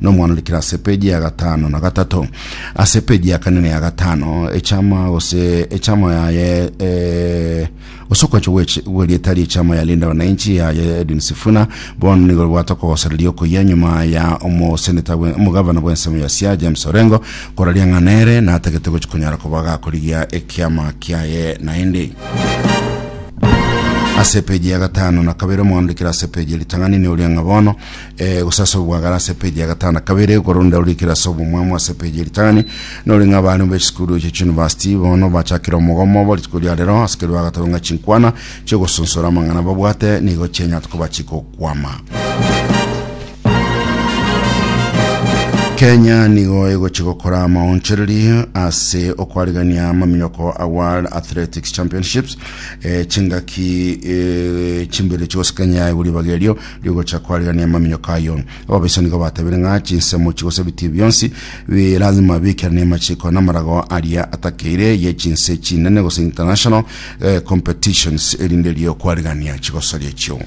nomwanurikire ase peji ya gatano na gatato ase peji ya kane na ya gatano echama gose echama yaye eh, gose okwancha gweche- gwerieta riechama ya linda wananchi yaye edwin sifuna bono nigo ribwate okogosereria okoyia nyuma ya omoseneta bwe- omogavana bw'ensemo ya sia james orengo koraria ng'a nere natagete gochi konyara koba gakorigia ekiama kiaye naende ase peji ya gatano na kabere omwanurikire ase peji ya ritang'ani ne oria ng'a bono Eh, gose ase obwagare ase epeji ya gatano na kabere okoro nde orikire ase obomwamo ase epeji ya ritang'ani nore ng'a abana be chisukuru eche chiunivasiti bono bachakire omogomo bo rituko ria rero ase kerwa gatano ng'a chinkwana chiogosonsora amang'ana babwate nigo chianyate koba chikokwama kenya nigo egochi gokora amaonchereri ase okwarigania amaminyoko a world athletics championships e, chingaki e, chimbere chigosikanya iguribaga erio rigocha koarigereria amaminyoka ayio. Ababisa nigo batebiire ng'a chinsemo chi gose bitii bionsi bi lazima biikerane amachiko na amarago aria atakeire ye chinse chinene gose international eh, competitions erinde erio kwarigereria chigosoria echio.